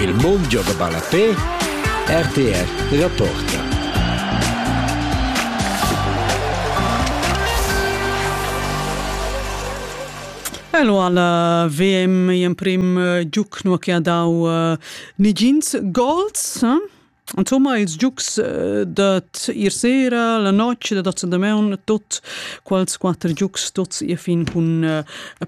Il mondio da ballapè RTR rapporta. Hello alla VM, in prim uh, giuc nu che ha dau uh, nigins goals. Eh? Insomma, ils giugs dad ir sera, la notg da dats damaun, tuot quels quatter giugs tuots i fin cun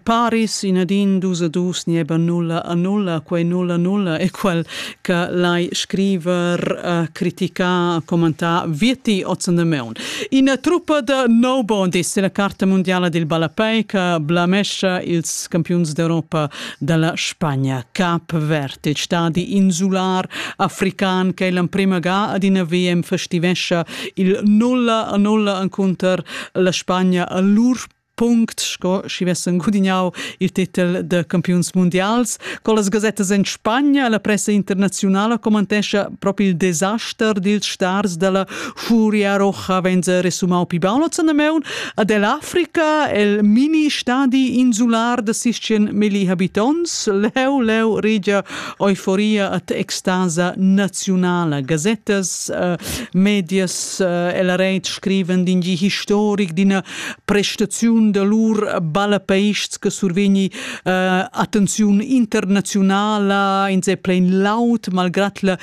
Paris in ad in, dus a dus, nieba nulla a nulla, quai nulla nulla è quel cha lai scriver, criticar, commentar vietti oz damaun. Ina truppa da no bondis è la carta mundiala dil ballapei che blamescha ils campiuns d'Europa da la Spagna. Cap Verd, il stadi insular african che l'emprima ga ad ina VM festivescha il nulla a nulla encunter la Spagna a lur punct sco schi vessen gudignau il titel de campiuns mundials. Con las gasettas en Spagna la pressa internazionala commentescha proprio il desaster dils stars dalla Furia Rocha venza resumau pi baul ozan da meun ad el Africa, el mini stadi insular da sistien milli habitonts, leu leu regia euforia at extasa naziunala, gazettas, uh, medias, uh, el reit scriven d'in gi historic d'ina prestaziun da lur ballapeists che survegni uh, attenziun internazionala, in se plein laut, malgrat la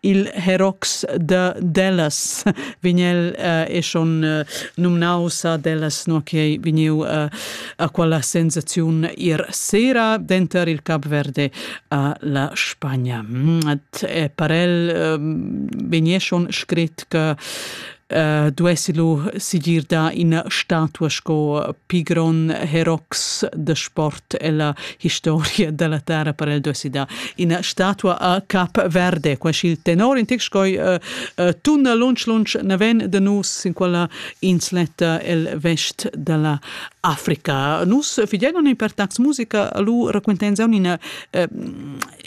Il herox de Dallas vignel uh, e schon uh, numnaus Dallas no che vegniu uh, a quella sensaziun ir sera denter il Cap Verde a la Spagna. Mm, et parel um, vegnie schon scrit che Uh, duessi lu sigir da ina statua sco pigron herox de sport ella historia della terra per el duessi da ina statua a cap verde qua il tenor in tic scoi uh, uh, tunna lunch lunch naven de nus in quella insletta el vest della Africa nus figenon in per tax musica lu raquentenza una uh,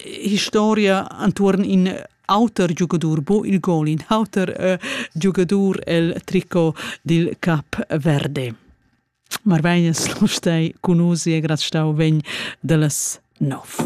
historia antuorn in auter giugadur bo il gol in auter äh, giugadur el tricot dil Cap Verde. Marvegnes Lustei cun usi e graztau vegn dallas nov.